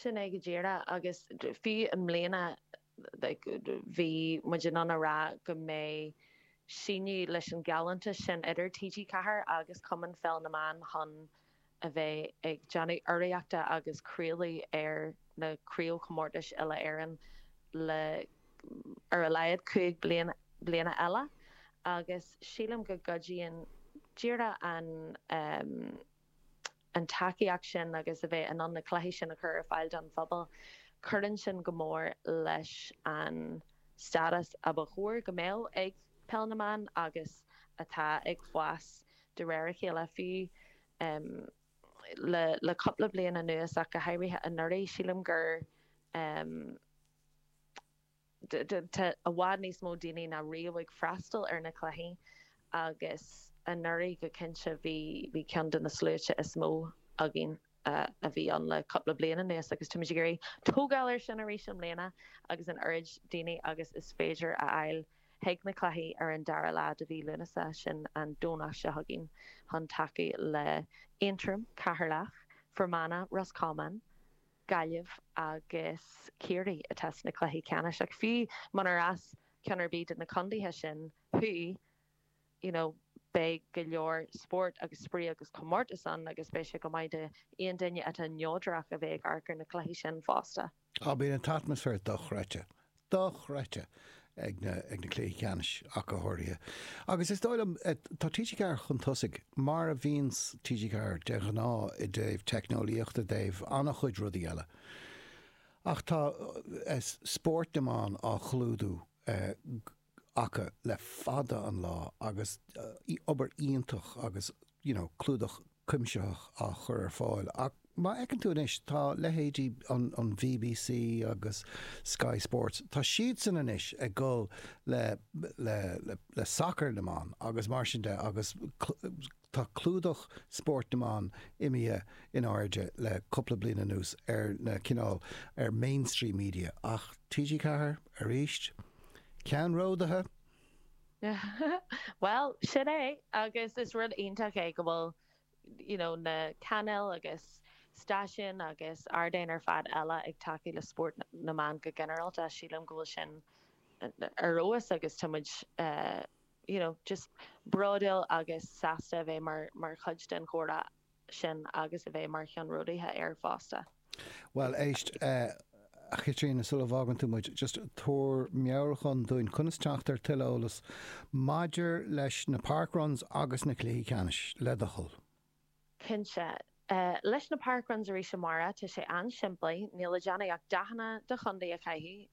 Sin é go díreach, agus fiú i mbliana bhí muid in ann a rá go mbeidh síneadh leis an ghealltanas sin idir TG4 agus Cumann Pheil na mBan chun a bheith ag déanamh urraíochta agus craoladh ar na craobhchomórtais uile-Éireann le haghaidh ar a laghad cúig bliana eile agus sílim go gcuidíonn díreach an an tacaíocht sin agus a bheith in ann na cluichí sin a chur ar fáil don phobal, cuireann sin go mór leis an stádas a ba chóir go mbeadh ag Peil na mBan agus atá ag fás de réir a chéile, fiú le cúpla bliain anuas ach go háirithe anuraidh. Sílim gur. Tá i bhfad níos mó daoine ná riamh ag freastal ar na cluichí agus anuraidh go cinnte bhí ceann de na sluaite is mó againn a bhí ann le cúpla bliain anuas agus táimid ag iarraidh tógáil air sin arís i mbliana agus an oiread daoine agus is féidir a fháil chuig na cluichí ar an dara lá de mhí Lúnasa, sin an Domhnach seo chugainn, chun tacú le Aontroim, Ceatharlach, Fermanagh, Ros Comáin. Gaillimh agus Ciarraí atá sna cluichí ceannais ach fiú munarb as ceann ar bith de na contaetha sin thú you know beidh go leor spórt agus spraoi agus comórtas ann agus beidh sé go maith d'aon duine atá neodrach a bheith ag amharc ar na cluichí sin fosta. Á, bíonn an t-atmaisféar dochreidte. dochreidte ag na cluichí ceannais ach go háirithe. Agus is dóigh liom, tá TG4 chun tosaigh, mar a bhíonn TG4 de ghnáth i dtaobh teicneolaíochta, i dtaobh an-chuid rudaí eile. Ach tá spórt na mban á chlúdú acu le fada an lá agus obair iontach agus, you know, clúdach cuimsitheach á chur ar fáil. Ach má fheiceann tú anois, tá leithéidí an BBC agus Sky Sports, tá siadsan anois ag gabháil le sacar na mban agus mar sin de agus tá clúdach spóirt na mban imithe in airde le cúpla bliain anuas ar na cineál, ar mainstream media. Ach TG4? Aríst? Ceannródaithe? Bhuel, sin é, agus is rud iontach é go bhfuil you know na cainéil agus stáisiúin agus ardáin ar fad eile ag tacú le spórt na mban go ginearálta, sílim go bhfuil sin ar fheabhas agus tá muid you know just bródúil agus sásta a bheith mar chuid den chomhrá. sin agus a bheith mar cheannródaithe air fosta. Bhuel, éist, a Chaitríona, sula bhfágann tú muid, just tabhair meabhrúchán dúinn conas teacht ar tuilleadh eolas maidir leis na parkruns agus na cluichí ceannais, le do thoil. Cinnte. Leis na parkruns arís, a Mháire, tá sé an-simplí, níl le déanamh ach dathanna do chontae a chaitheamh,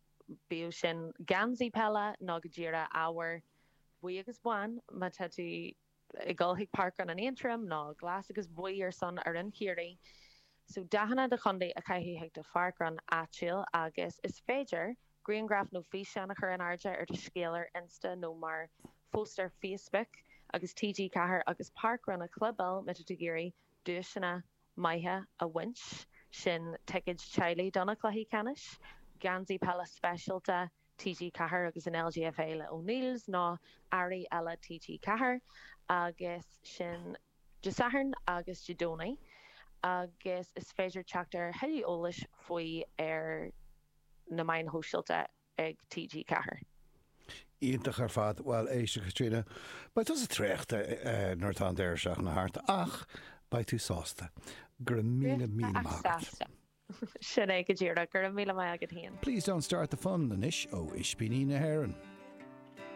bíodh sin geansaí peile nó, go díreach, ábhar buí agus bán, má tá tú. ag gabháil chuig Parkrun in Aontroim ná glas agus buí ar son fhoireann Chiarraí. So, dathanna do chontae a chaitheamh chuig do pharkrun áitiúil agus is féidir grianghraf nó físeán a chur in airde ar do scéal ar Insta nó mar phost ar Facebook agus TG4 agus Parkrun a chlibeáil má tá tú ag iarraidh duaiseanna maithe a bhaint, sin ticéid teaghlaigh do na cluichí ceannais, geansaí peile speisialta, TG4 agus an LGFA le O'Neills ná earraí eile TG4 agus sin Dé Sathairn agus Dé Domhnaigh agus is féidir teacht ar a thuilleadh eolais faoi ar na meáin shóisialta ag TG4. Iontach ar fad. Bhuel, éist, a Chaitríona, beidh tusa traochta nuair atá an deireadh seachtaine thart ach beidh tú sásta. Go raibh míle, míle maith agat. Sin é go díreach. Go raibh míle maith agat féin. Please don't start the fun anois ó Ispíní na hÉireann.